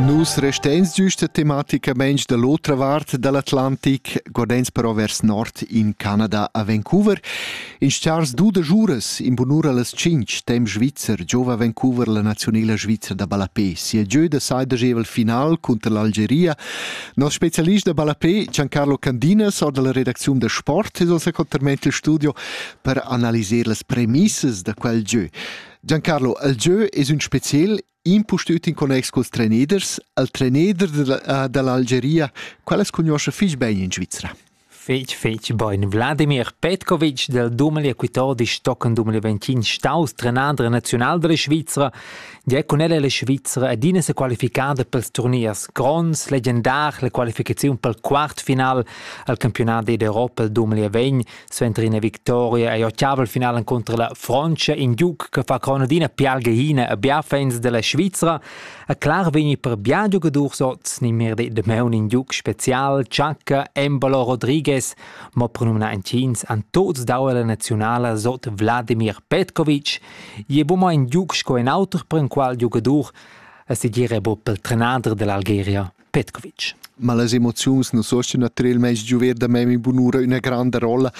Nus resteins giusta tematicamein da l'otra vart dall'Atlantic, guardeins però vers nord in Canada a Vancouver. In stars du da juras in bunura las cinc tem Svizzer giova Vancouver la nazionela svizra da ballapé. Sia gieu da sai da gevel final cunter l'Algeria. Nos specialist da ballapé Giancarlo Candinas or dalla redacziun da sport es ossa conterment il studio per analiser las premissas da quel gieu. Giancarlo, il gieu es ün speciel impustüt in connex culs treneders, al treneder della, dall'Algeria. Qual as cugnuoscha fich bain in Svizra? Fetg, fetg bain. Vladimir Petkovic del 2014 tochen 2025 staus trenader nazional della Svizra, die cun el la Svizra adina se qualificada pels turniers gronds, legendar, la qualificazione pel quartfinal al campionat d'Europa del 2020 Suenter ina victoria ei ottavel final encunter la Frontscha, in giug che fa crona d'ina pialgehina a biafens della Svizra. E clar vegni per bien giugadurs oz ni mir de Meun in giug special, Chaka, Embolo Rodriguez, mo per numna entgins an tots dau la nazionala sot Vladimir Petkovic. Je bu mo in giug sco in auter per in qual giugadur, e si dire bu pel trenader dell'Algeria. Petkovic. Ma las emoziuns non sostian a trel meis giuver da mem in bunura üna granda rolla.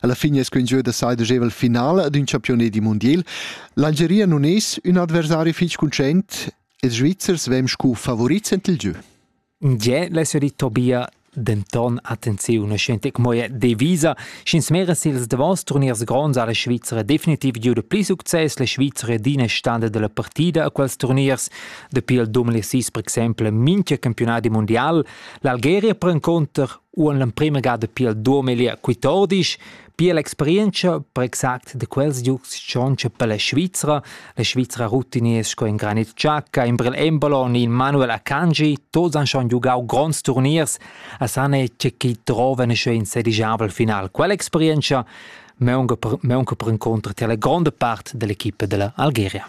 Alla fine es quin gieu da sai degeva il finale d'un champione di mondial. L'Algeria non es ün adversari fich cuncent, ils Svizzers vem scu favorits ent il gieu. Je l'eseri Tobia denton attenziun scente moje devisa schins meres ils davos turniers gronds alle Svizzera definitiv giu de pli success le Svizzera dine stande della partida a quels turniers Dapi il 2006, per exempel, mincha campionadi mundial, l'Algeria per inconter u en l'emprima ga dapi il 2014 pia l'experienza per exact da quels giugs tschontscha per la Svizra. La Svizra rutinier sco in Granit Xhaka, in Brel Embolo in Manuel Akanji, tots han schon giugau gronds turniers a sane c'è chi trova in in sedigiabel final. Quell'esperienza meunca per, meunca per incontrar la gronda part dell'equipe della Algeria.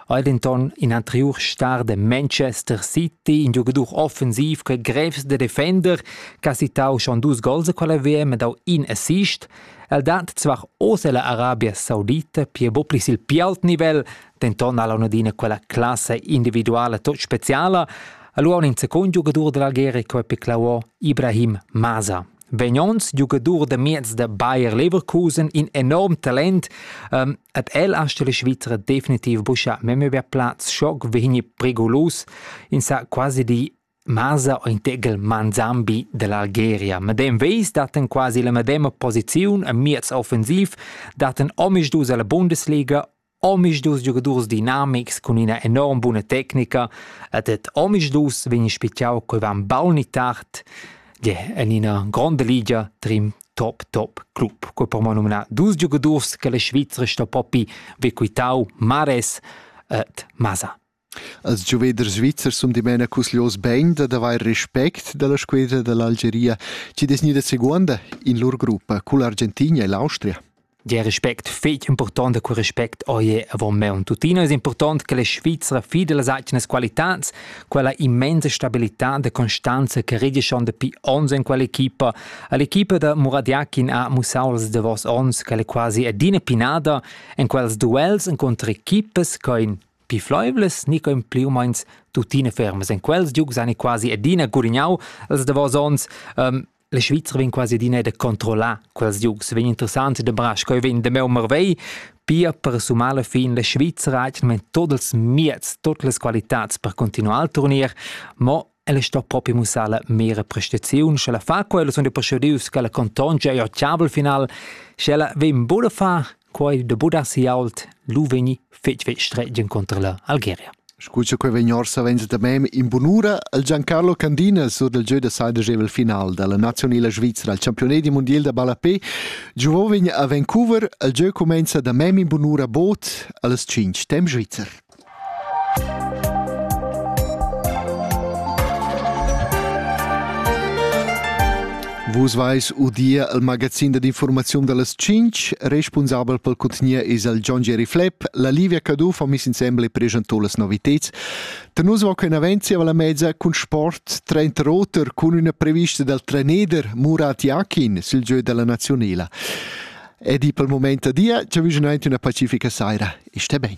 ei denton in anteriur star de Manchester City, in giugadur offensiv che grevs de defender, che ha citau schon dus gols a quella WM e dau in assist. El dat zwar oz ella Arabia Saudita pia bo pli sil più alt nivel, denton ha l'onadina quella classe individuale tot speciala. Allora un secondo giocatore dell'Algeria che è piclauo Ibrahim Maza. vegn ons giugadur da miez da Bayer Leverkusen in enorm talent um, ed el ha stelle Svizra definitiv buscha memöver Platz schock vegni prigulus in sa quasi di Masa o integel Manzambi dell'Algeria. Medem vis daten quasi la medema posiziun a miez offensiv, daten omis dus alla Bundesliga Omisdus giugadurs dinamics cun ina enorm buna tecnica ed ed omisdus vegn spitgau cheu van baul ni tard gie en ina gronda ligia trin top top club. Quei po mo numnar dus giugadurs che la Svizra sto propi be quitau Mares ed Masa. Els giuveders svizzers sun dimena cusglios bain dad avair respect da la squedra da l'Algeria chi'd es gnida seguonda in lur gruppa cull'Argentina e l'Austria. Der Respekt fetg important da quel respect oie avon meun tuttina es important che la Svizzera fida las atgnas qualitats, quella immensa stabilità da constanza che redischon dapi ons in quell'equipa. All'equipa da Muradiakin ha mussau els davos ons che è quasi adina pinada en quels duels incontro equipas che in Pli fleivlas ni co pli u meins tuttina fermas. En quels giugs han quasi adina gurignau els davos onns. Um, la Svizra vegn quasi adina da controllar quels giugs. Vegn interessant da bras, co vegn de meu marvei, pia per sumar la fin la Svizra ha tot els mieds, tot las qualitads per continuar al turnier, mo Ella sto propi mussar la mera prestaziun, sche la fa quella sun presidius che la contongia e occhiabel final, sche ella vegn buda fa quei de buda si ault, lu vegni fetg fetg stretgen contro la Algeria. Scusa che vegn orsa venza da mem in bunura al Giancarlo Candina sur del gieu da saidegevel final dalla nazionala Svizzera al campione di mondial da ballapé giovò vegn a Vancouver al gieu comenza da mem in bunura bot allas 5 temp svizzer. Vus vais udir il magazin dad informaziun dallas tschintg. Responsabel pel cutgnier es el John Jerry Flepp. La Livia Cadù fa miss insembel e presentò las noviteds. Da nus va quei avanti zieva la mezza cun sport trenta roter cun üna prevista dal trainer Murat Yakin sil gieu della nazionela. Ed i pel moment a dia, ci vügen aint üna pacifica saira. Iste ben.